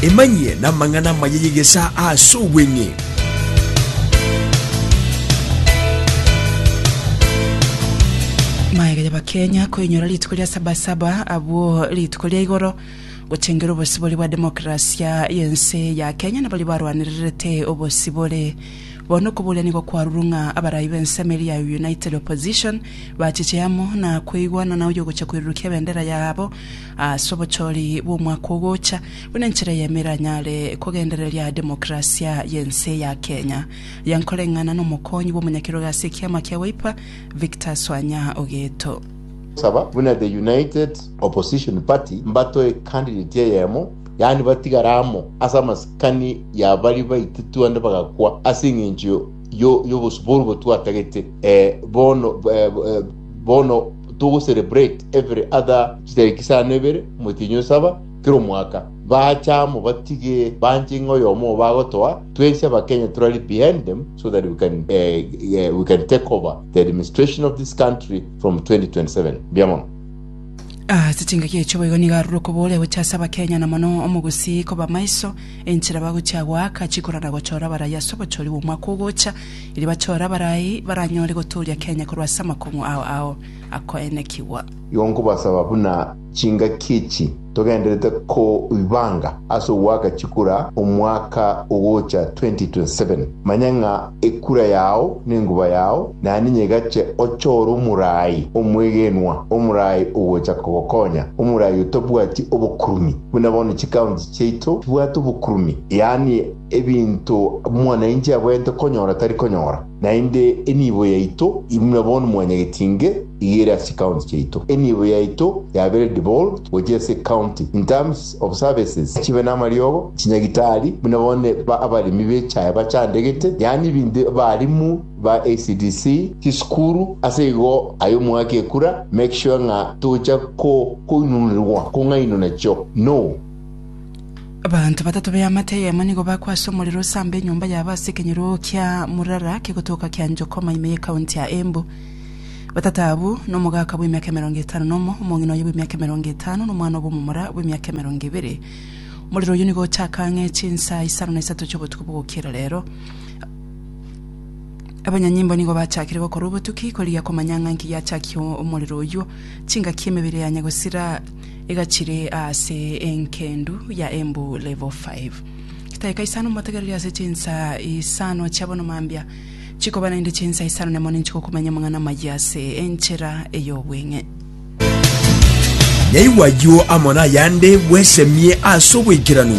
Emanyie namang'ana amaya y'egesaa aase obweng'e. Maega y'Abakenya koinyora rituko ria Sabasaba abwo rituko ria igoro gochengera obosibori bwa demokrasia y'ense ya Kenya na baria barwanererete obosibore. Bono okoboria nigo kwarurwe ng'a abarai b'ensemo eria ya United Opposition bachiche amo na koigwana na oyogocha koirurukia ebendera yabo Ase obochori bw'omwaka ogocha, buna enchera eyemo eranyare kogendereria demokerasia y'ense ya Kenya, riankoreng'ana n'omokonyi bw'omonyakerogo ase ekiama kia Wiper, Victor Swanya Ogeto. Saba buna The United Opposition Party mbatoe candidate eyemo, yaani batigare amo ase amasikani ya baria baititwe ande bagakwa ase eng'encho y'obosuburu botwatagete bono. Bono togocerebrate every other chitariki isano ebere, omotienyi o saba, kera omwaka. Baacha amo batige banche ng'a oyomo obo agotoa, twensi abakenya torari behind them so that we can, eh, eh, we can take over the administration of this country from 2027. Mbuya mono. Ase chingaki echio boigo nigo arure okobooria gochia ase abakenya na mono omogusii koba maiso enchera bagochia goaka chikura na gochora abarai ase obochori bw'omwaka ogocha, Erio bachore abarai baranyore gotooria Kenya korwa ase amakong'u ao ao akoenekigwa. Igo nkobasaba buna chingaki echi togenderete koibanga ase ogoaka chikura omwaka ogocha 2027, manya ng'a ekura yao nenguba yao naende nyegache ochore omorai omwegenwa, omorai ogocha kogokonya, omorai otabwati obokurumi, buna bono chikaunti chiaito chibwate obokurumi, yaani. Ebinto omwananchi abwenerete konyora tari konyora, naende enibo yaito imwe bono mwanyagetinge iga ere ase ecounty chiaito. Enibo yaito yabere devolved gochia ase ecounty in terms of services, chibe namariogo, chinyagitari, buna bono abaremi b'echae bachandegete, yaani ebinto abarimu ba ECDC, chisukuru, ase igo aye omwaka ekura make sure ng'a tocha koinunerwa kong'ainwa nachio no. Abanto batato b'eamate eyemo nigo bakwa ase omorero osamba enyomba yabo ase ekenyeroo kia Murara kegotoka kia Njokoma ime y'ekaunti ya Embu. Batato abwo n'omogaka bw'emiaka emerongo etano nomo, omong'ina oye bw'emiaka emerongo etano, nomwana obw'omomura bw'emiaka emerongo ebere. Omorero oyio nigo ochaka ang'e chinsa isano na isato chi'obotuko bogokiera rero. Abanyanyimbo nigo bachakire gokora obotuki korigia komanya ng'a inki giachakia omorero oyio. Chingaki emebere yanya gosira egachire aase enkendu ya embu level five. Chitaika isano momotegereri ase chinsa isano chia bono mambia, chikoba naende chinsa isano nemo ninchi gokomenya amang'ana amayia ase enchera ey'obweng'e. Naigwa ayio amo nayande bwesemie ase oboikeranu.